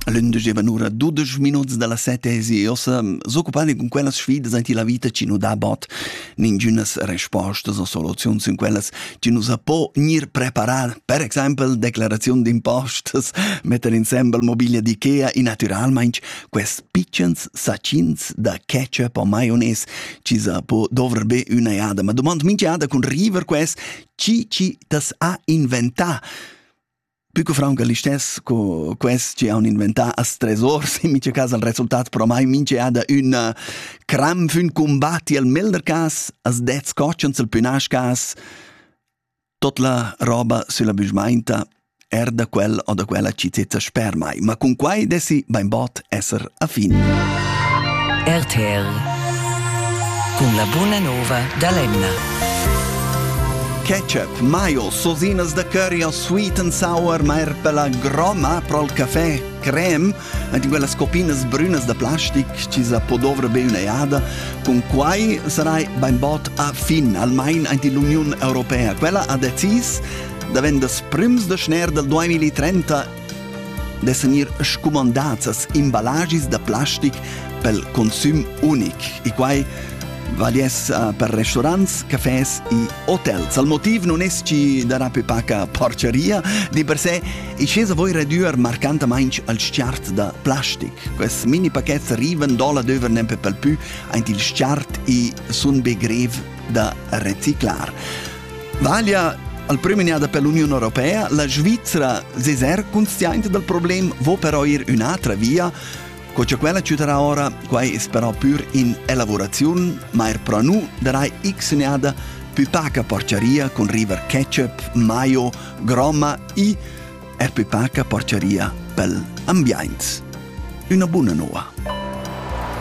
Lünde givan ura dudesch minuts da la sette e ossa s'occupandi cun quellas sfidas aint la vita chi nu dà bod ningünas respostas o soluziuns in quellas chi nu sa po gnir preparar. Per exaimpel declaraziun d'impostas, metter insembel mobiglia d'IKEA e natüralmaing quest pitschens sachins da ketchup o maionez chi sa po dovr be üna jada. Ma dumand minch'jada cun river quest chi chi t'as ha inventà. Pü co fraunca listess co quest chi haun inventà as tresors, in mincha cas han resultats promai minch'eada ün cram fün cumbat. I'l melder cas as dets cotschens, i'l pü nasch cas tot la roba sülla büschmainta er da quel o da quella chi zeta sper mai. Ma cun quai dessi bainbod esser a fin. RTR cun la buna nova da l'Emna. Ketchup, maio, sosinas de curry o sweet and sour, ma er per la groma pro il café, creme, ed in quelles copinas brünas da plastic, ci sa po dovre be una iada, con quai sarai bein bot a fin, almain ant l'Union Europea. Quella ha decis, da vendas prims de schner del 2030 dessan ir scumandats as imballagis da plastic pel consüm unic e quai valiess uh, per restaurants, cafés e hotels. Al motiv non esci darà più paca porcheria, di per sé e scesa voi redüer marcantamaing al sciart da plastic. Quest mini paquets arrivan dolla döver nempe pel pü aint il sciart e sun be grev da reciclar. Vaglia al premiada per l'Union Europea, la Svizra seser consciente dal problem vo però ir un'altra via Co che quella ciuterà ora, quai es però pur in elavuraziun, ma er pro nu darai xnada pü paca porciaria con river ketchup, maio, gromma e er pü paca porciaria pel ambiaint. Una buna noa.